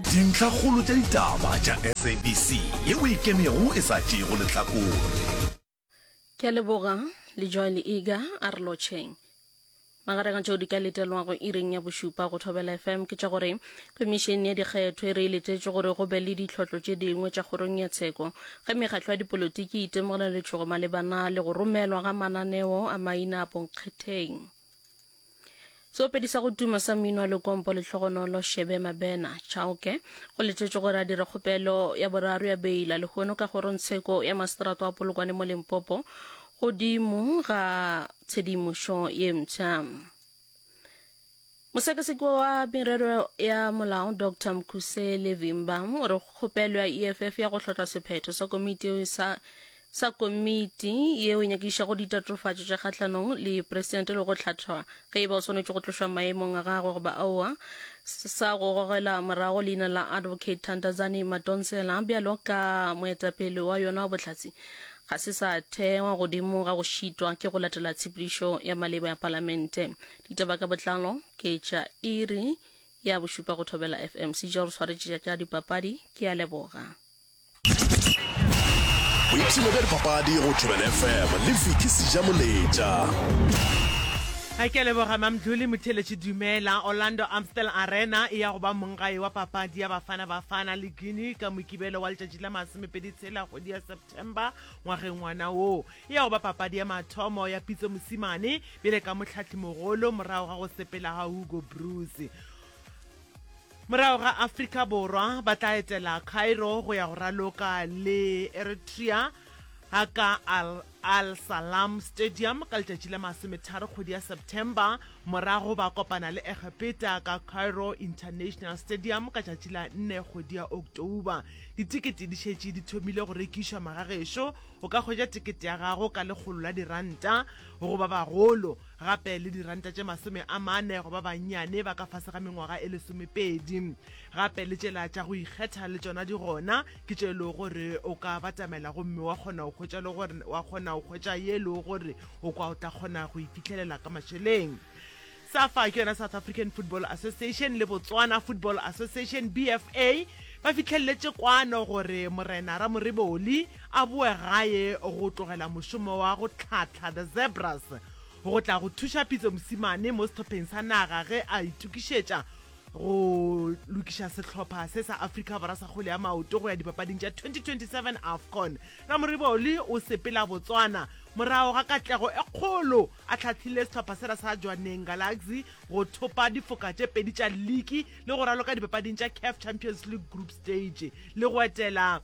Dintlhakgolo tša ditaba tša SABC ye o e kenego e sa tšeego lehlakore. Ke a leboga, Lejoy Leega a re lotšheng. Magareng a tšeo di ka letelwago iring ya bošupa go Thobela FM ke tša gore Khomišene ya Dikgetho e re e letetše gore go be le ditlhohlo tše dingwe tša Kgorong ya Tsheko ge mekgatlo ya dipolotiki e itemogela letšhogo malebana le go romelwa ga mananeo a maina a bonkgetheng. seopedi sa go tuma sa mmino wa lekompo le tlhogonolo shebe mabena chauke go letetšwe gore a dire kgopelo ya boraro ya beila lehono ka kgorongtsheko ya maseterato wa polokwane mo lempopo godimo ga tshedimošo ye mpsha mosekaseki wa merero ya molao dr mkhusele vimba o re kgopelo ya eff ya go hlotla sephetho sa komiti sa sa komiti yeo e nyakišago ditatofatšo tša kgahlanong le presidente le go hlathwa ge e ba o swanetše go tlošwa maemong a gagwe goba aowa sa go gogela morago leina la advocate Thandazani Madonsela bjalo ka moetapele wa yona wa bohlatse ga se sa thewa godimo ga go šitwa ke go latela tshepedišo ya maleba ya palamente. Ditaba ka botlalo ke tša iri ya bošupa go thobela FM. Sejaro swaretše tša dipapadi ke a leboga. boipshino bja dipapadi go thobela fm le fiki seja moletša a ke leboga mamdluli motheletši dumela orlando amstel arena e ya go ba monggae wa papadi ya bafana bafana le guinea ka mokibelo wa letšatši la masomepedi tshela kgwedi ya september ngwageng ngwana wo e ya go ba papadi ya mathomo ya pitso mosimane bjale ka mohlahlimogolo morago ga go sepela ga hugo bruce Morago ga Afrika Borwa, ba tla etela Cairo go ya go raloka le Eritrea ka Al Al Salam Stadium ka letšatši la masometharo kgwedi ya September, morago ba kopana le Egepeta ka Cairo International Stadium ka tšatši la nne kgwedi ya October. Ditekete di šetše di thomile go rekišwa. Magagešo o ka hwetša tekete ya gago ka lekgolo la diranta go ba bagolo. gape le diranta tše masome a mane go ba bannyane ba ka fase ga mengwaga e lesomepedi. Gape le tšela tša go ikgetha le tšona di gona, ke tše e lego gore o ka batamela gomme wa kgona go hwetša le gore wa kgona go hwetša ye e lego gore o kwa o tla kgona go e fihlelela ka mašeleng. Safa ke yona South African Football Association le Botswana Football Association, BFA, ba fihlelletše kwano gore Morena Ramoriboli, a boe gae go tlogela mošomo wa go tlhahla The Zebras go tla go thuša Pitso Mosimane mo sehlopheng sa naga ge a itokišetša go lokiša sehlopha se sa Afrika Borwa sa kgwele ya maoto go ya dipapading tša 2027 Afcon. Ramoriboli o sepela Botswana morago ga katlego e kgolo a hlahlile sehlopha sela sa Jwaneng Galaxy go thopa difoka tše pedi tša liki le go raloka dipapading tša CAF Champions League Group Stage le go etela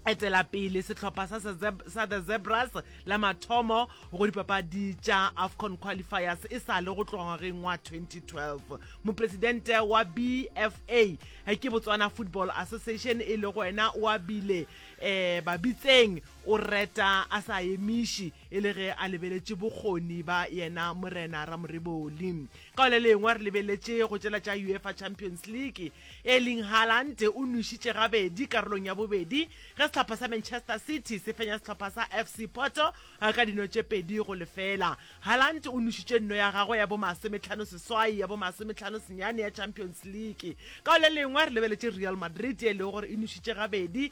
etela pele sehlopha sa, sa the Zebras la mathomo go dipapadi tša AFCON qualifiers e sa le go tloga ngwageng wa 2012. Mopresidente wa BFA eh, ke Botswana Football Association e le go wena o abile eh, babitseng o reta a sa emiše e le ge a lebeletše bokgoni ba yena Morena Ramoreboli. Ka le lengwe re lebeletše go tšela tša UEFA Champions League. Erling Haaland o nwešitše gabedi karolong ya bobedi ge sehlopha sa Manchester City se fenya sehlopha sa FC Porto ka dino tše pedi go lefela. Haaland o nwešitše nno ya gagwe ya bomasometlhano seswai ya bomasometlhano senyane ya Champions League. Ka le lengwe re lebeletše Real Madrid e lego gore e nwešitše gabedi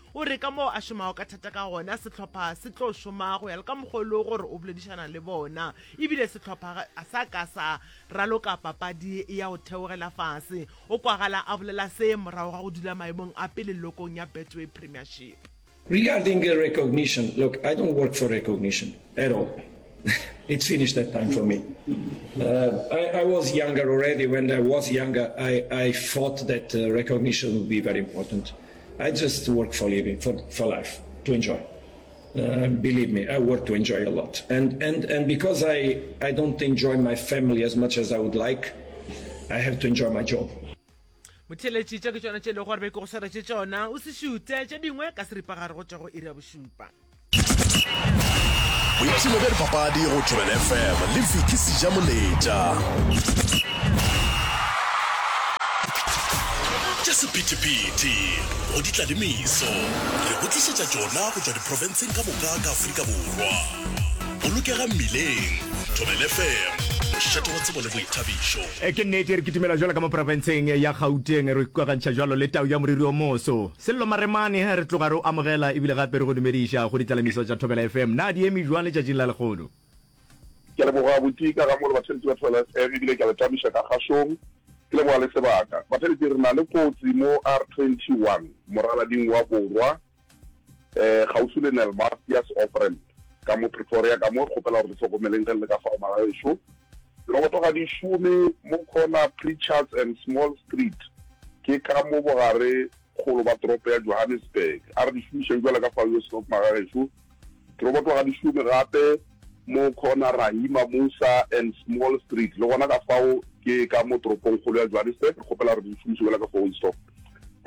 O re ka moo a šomago ka thata ka gona, sehlopha se tlo šoma go ya le ka mokgwa o lego gore o boledišana le bona. E bile sehlopha ga a sa ka sa raloka papadi ya go theogela fase, o kwagala a bolela se morago ga go dula maemong a pele lelokong ya Betway Premiership. Regarding recognition, look, I don't work for recognition at all. It's finished that time for me. Uh, I, I, was younger already. When I was younger, I, I thought that uh, recognition would be very important. I just work for living, for, for life, to enjoy. Uh, believe me, I work to enjoy a lot. And, and, and because I, I don't enjoy my family as much as I would like, I have to enjoy my job. motheletši tša ke tšona tše e lego gore be ke go swaretše tšona o se šute tše dingwe ka seripagare go tšwa go iri ya bošupa boipshino bja dipapadi go tšwebel fm le viki seja moletša tša sephethephethe go di tlalemiso re go tlišetša tšona go tšwa diprofenseng ka moka ka aforika borwa bolokega mmileng tšwebel fm mošate wa tsebo le boithabišo e ke nnete re kitimela jalo ka mo profenseng ya gauteng re ikokagantšha jalo le tau ya moriri o moso Sello Maremane, Re tloga re o amogela ebile gape re go dumediša go ditlalamiso tša Thobela FM. Na di eme bjang letšatšing la lehono? Ke a leboga Buti ka ga mo le batheletši ba Thobela FM ebile ke a le tlamiša ka kgašong. Ke leboga le sebaka. Batheletši re na le kotsi mo R21 moralading wa borwa kgauswi le Nelmastius Offramp ka mo Pretoria ka mo. Re kgopela gore le hlokomeleng ge le le ka fao magaešo. Re go tloga dišome mo corner Pritchards and Small Street, ke ka mo bogare kgolo ba toropo ya Johannesburg. A re di šomišeng bjalo ka fao yo Snob Magagešo. Re go tloga dišome gape mo corner Rahima Moosa and Small Street, le gona ka fao ke ka mo toropong kgolo ya Johannesburg. Re kgopela gore di šomiše bjalo ka fao yo Snob.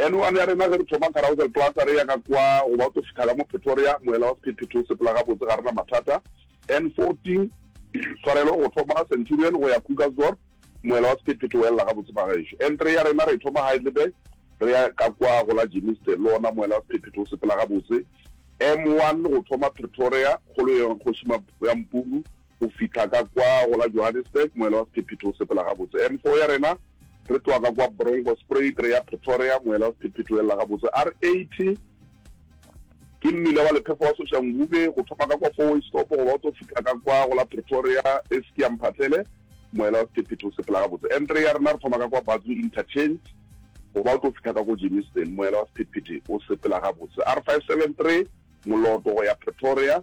Anyone ya rena ge re thoma Carousel Plaza re ya ka kwa goba o tlo fihla ka mo Pretoria, moela wa sephethephethe o sepela gabotse, ga re na mathata. N14, Tshwarelo go thoma Centurion go ya Krugersdorp, moela wa sephethephethe o elela gabotse fa gešo. N3 ya rena re e thoma Heidelberg re ya ka kwa go la Germiston, le ona moela wa sephethephethe o sepela gabotse. M1 go thoma Pretoria, kgolo ya Kgoši Mampuru, go fihla ka kwa go la Johannesburg, moela wa sephethephethe o sepela gabotse. M4 ya rena re tloga ka kwa Bronkospruit re ya Pretoria, moela wa sephethephethe o elela gabotse. R80, Ke mmila wa lephefo wa Soshanguve, go thoma ka kwa Fourwaystop go ba o tlo fihla ka kwa go la Pretoria, e se ke ya mphatlele, moela wa sephethephethe o sepela gabotse. N3 ya rena re thoma ka kwa Batsu Interchange go ba o tlo fihla ka ko Germiston, moela wa sephethephethe o sepela gabotse. R573 moloto go ya Pretoria.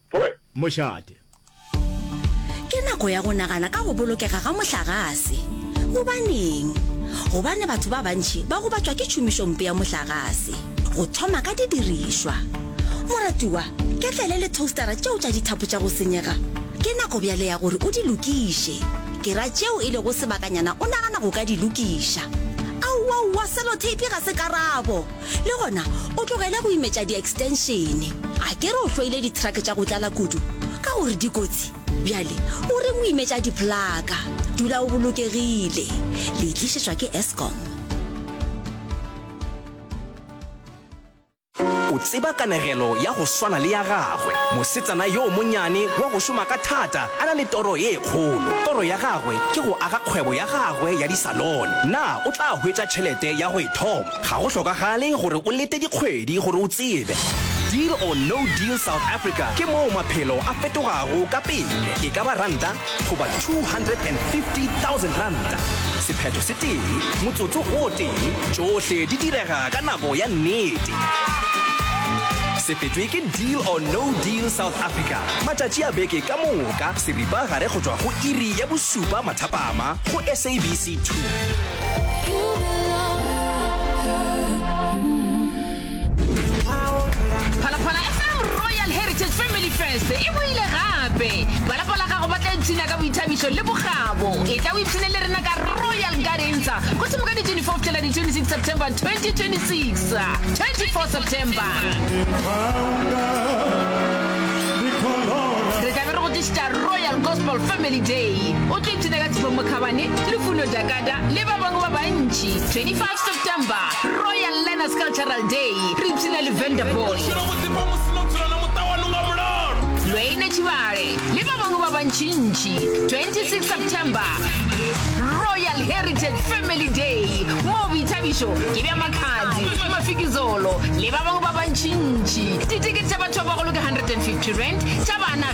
mošate. Ke nako ya go nagana ka go bolokega ga mohlagase. Gobaneng? Gobane batho ba bantši ba gobatšwa ke tšhomišompe ya mohlagase, go thoma ka didirišwa. Moratiwa, ketlele le thostara tšeo tša dithapo tša go senyega, ke nako bjale ya gore o di lokiše. Ke ra tšeo e lego sebakanyana o nagana go ka di lokiša. Aowaowa, seloteipi ga se karabo! le gona o tlogele go imetša di-extenšene a ke re o hloile dithrake tša go tlala kudu ka gore dikotsi bjale o reng o imetša diplaka dula o bolokegile le itlišetšwa ke escom o tseba kanegelo ya go swana le ya gagwe mosetsana yoo monyane wa go šoma ka thata a na le toro ye kgolo toro ya gagwe ke go aga kgwebo ya gagwe ya disalone na o tla hwetša tšhelete ya go e thoma Ga go hlokagale gore o lete dikgwedi gore o tsebe. Deal or No Deal South Africa ke moo maphelo a fetogago ka pele, e ka ba ranta goba R250,000. Sephetho se tee, motsotso o tee, tšohle di direga ka nako ya nnete. Se fetšwe ke Deal or No Deal South Africa matšatši a beke ka moka seripagare go tšwa go iri ya bošupa mathapama go SABC 2. phalaphala fm royal heritage family fest e boile gape balapa la gago ba tla ipshina ka boithabišo le bokgabo e tla o ipshine le rena ka royal gardens go thoma ka di 24 fihlela di 26 september 2026 24 september re tlabe re go tlišitša royal gospel family day o tlo ipshina ka tshifo mokgabane le funo Kada le ba bangwe ba bantši, 25 September, Royal Learners Cultural Day, re ipshina le Vanderboy. Lweine Tšhibale le ba bangwe ba bantšintši, 26 September, Royal Heritage Family Day, moo boithabišo ke bja Makhadzi, Mafikizolo le ba bangwe ba bantšintši. Ditekete tša batho ba bagolo ke 150 rand, tša bana